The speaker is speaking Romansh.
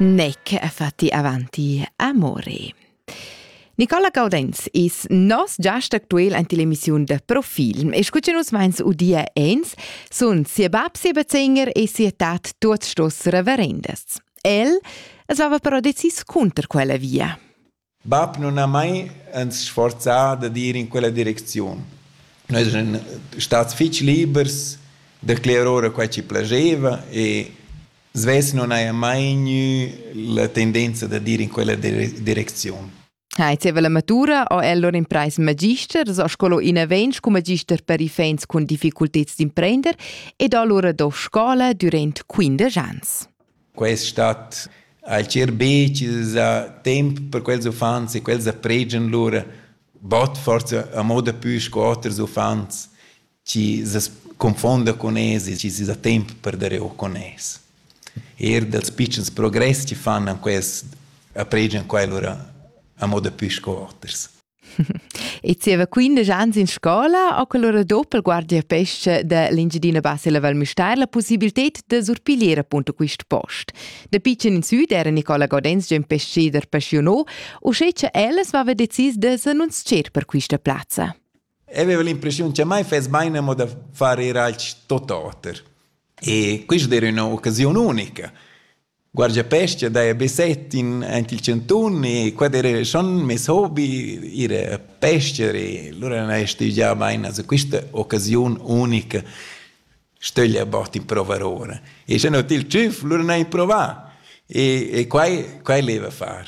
Nec è fatti avanti amore. Nicola Gaudenz is nos giast actuel ante l'emissiun de Profilm e scuce nus vains udia ens sun sia bab sia bezeinger e sia tat tuot stos reverendes. El es vava però decis conter quella via. Bab nun ha mai ans sforzà dad ir in quella direcziun. Noi eran stats fich libers da clerer ora quai chi plascheva e svess nun haja mai gnü la tendenza dad ir in quella dire direcziun. Ha il zievel amatura ho el lur imprais magister, s'ho sco inavent scu magister per iffaints cun difficulteds d'imprender ed ho lura do scoula dürant quindesch ans. Quest stat ha il schirbetg da temp per quels uffants e quels da pregian lur bod forsa a moda pü sco oters uffants chi se confonda cun es e chi s'es da temp per dare o con es. Eir dals pitschens progress chi fan an quest a pregian quai lura a moda pü sco oters. E zieva 15 ans in scola ha quell'ora doppelguardia pesce da l'Engiadina Bassa e la Val Müstair la possibilità da surpiglier appunto quist post. Da pitschen in süd era Nicola Godens già pesceder passionò, uschè che elles aveva decis da s'annunzier per quista plazza. Aveva l'impressione che mai fes mai amo da fare ir alch tot oter. E questa era un'occasione unica. Guardiapescha daja be set in aint il chantun e quai d'eira schon meis hobi, ir a pescher e lura n'haja stüdgià bain a quista occasiun unica stöglia bod improuvar ora. E scha no til tschüf lura n'haja improvà e e quai quai l'eva far.